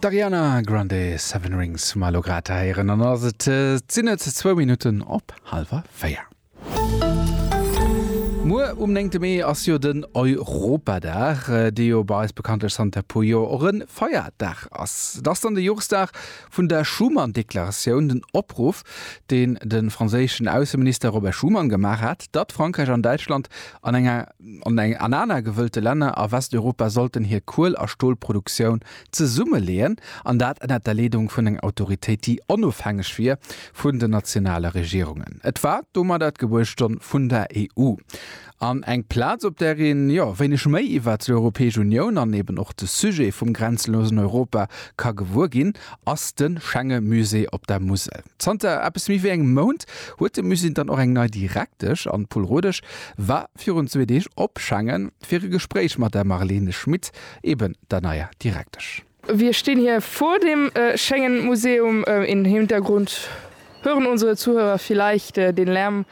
D'Ariana Grande, Seven Rings hu mer elo grad héieren an ass et sinn et zwou Minutten op hallwer véier. Muer um néngte Mee ass jo den Europadag, dee jo bei eis bekanntlech zanter e puer Joer och e Feiertag ass. Et ass dann de Joresdag vun der Schuman-Deklaratioun, den Opruff, deen de franséischen Ausseminister Robert Schuman gemaach hat, datt Frankräich an Däitschland an enger An aner gewëllte Länner a Westeuropa sollten hir Kuel a Stolproduktioun zesummeleeën, an dat ënnert der Leedung vun enger Autoritéit, déi onofhängeg wier vun den nationale Regierungen. Et war domadder d'Gebuertsstonn vun der EU, an eng Plaz, op där een, jo, wéineg méi iwwert d'Europäesch Unioun an eben och de Sujet vum grenzenlosen Europa ka gewuer ginn, ass de Schengemusée op der Musel. Zanter eppes méi wéi engem Mount huet de Musée dann och eng nei Direktesch an d'Paul Rodesch war virun zwee Deeg op Schengen fir e Gespréich mat der Marlene Schmit, eben der neier Direktesch. Wir stehen hier vor dem Schengen Museum im Hintergrund hören unsere Zuhörer vielleicht den Lärm.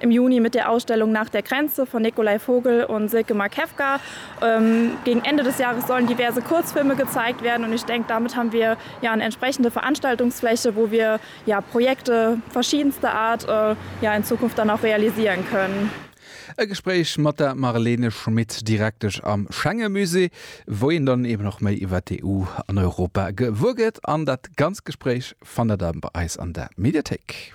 Im Juni mit der Ausstellung Nach der Grenze von Nikolai Vogel und Silke Markewka. Gegen Ende des Jahres sollen diverse Kurzfilme gezeigt werden und ich denke, damit haben wir ja eine entsprechende Veranstaltungsfläche, wo wir ja Projekte verschiedenster Art ja in Zukunft dann auch realisieren können. E Gespréich mat der Marlene Schmit, Direktesch am Schengemusée, wou een dann eben och méi iwwert d'EU an Europa gewuer gëtt. An dat ganz Gespréich fannt der dann bei eis an der Mediathéik.